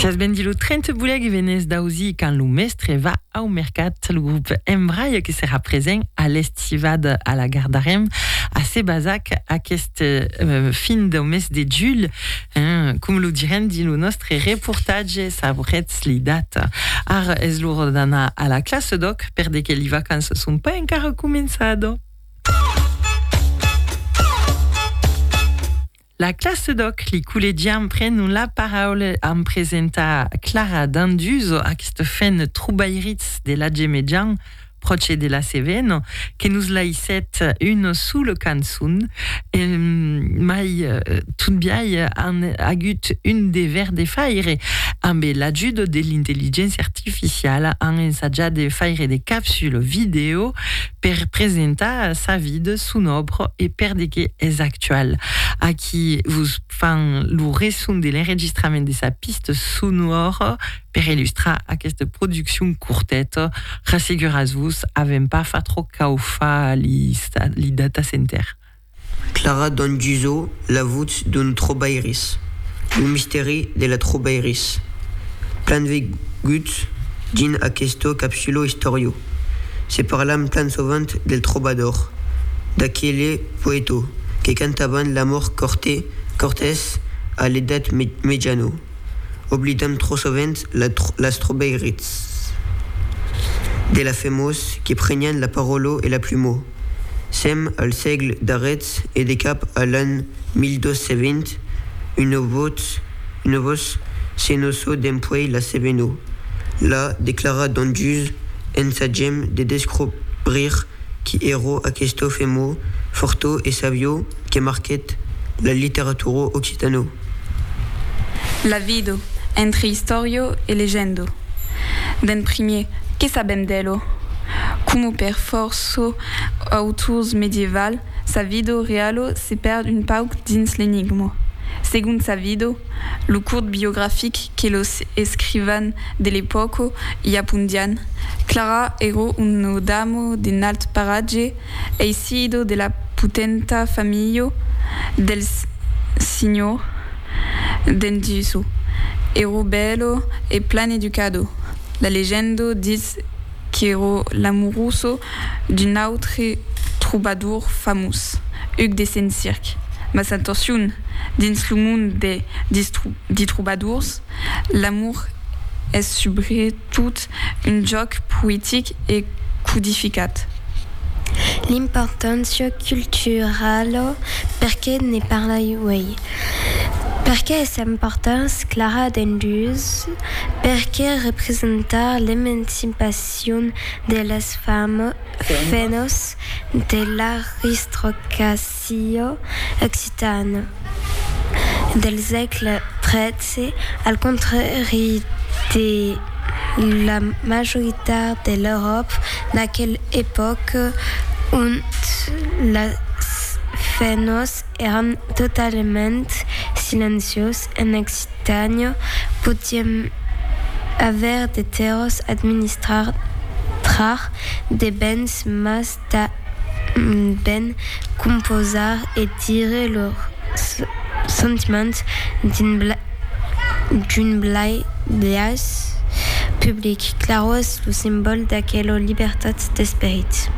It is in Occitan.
Siás bendit lo 30 bulèc e venés d'ausir quand lo mèstre va au mercat. Lo grup Embraia que serà present a l'Estivada a la Gar d'Arèm a Sebazac aquest fin de mes de julh, com lo direm dins lo nòstre reportatge, sabrètz li data. Ara es l'ora d'anar a la classa d'òc perde que li vacanças son pas encara començada. La classe d'òc, li collègiam prenon la paraula amb presenta Clara Danduzo, aquesta fen trobairits de l'atge mejan, pròche de la Cevena, que nos laissèt una sola cançon, mai totbiai an agut un dever de faire, ambe l'ajuda de l'intelligéncia artificiala, an ensajat de faire de capsules vidèo, per presentar sa vida, son òbra e per de qué es actual. Aquí vos fan lo resson de l'enregistrament de sa pista sonora per illustrar aquesta produccion corteta, rasseguratz-vos, avèm pas fa tròp cau fa li data center. Clara Dongiso La votz d'un trobairis, lo mistèri de la trobairis. Plan veguts dins aqueste capsulo istòriu, se parlam plan sovent del trobador, d'aquele poèto que cantavan l'amor corte, cortès a l'edat mejano. Oblidam trò sovent las trobairits de la femós que prenián la paròlo e la plumó. Sèm al sègle darrèth e de cap a l'an 1220, una votz se no so dempuèi la sève no la declara dont dus ensagem de descobrir qui ero aquesto femò fortó e savió, que marquèt la literatura occitana. La vido, entre istòrio e legendo. D'en primier, que sabèm d'elo? Coma per fòrça autors medievals, sa vido realo se pèrd un pauc dins l'enigma. Segon sa vido, lo curt biografic que los escrivans de l'epòca i apondián, Clara èra una dama d'un alt paratge, Ei sido de la potenta familho del Signor d'en Duso, ero belo e plan educado, la legendo ditz qu'ero l'amoroso d'un autre trobador famós, Huc de Sent-Circ, mas atorcion, dins lo mond de di trobadors, l'amor es subretot un jòc poetic e codificat. L'importància culturala, perqué ne parlai uèi? Perqué es importants clara dendús? Perqué representar l'emancipacion de las femnas de l'aristocracia? Cio occitane del sègle XIII, al contrari de la majoritat de l'Euròpa d'aquela epòca ont las fenhos èran totalament silenciós, en Occitània podièm aver de terrors, administrar de bens mas tanben composar e dire lors sentiments d'un blai biais public. Claror es lo simbòl d'aquela libertat d'esperit.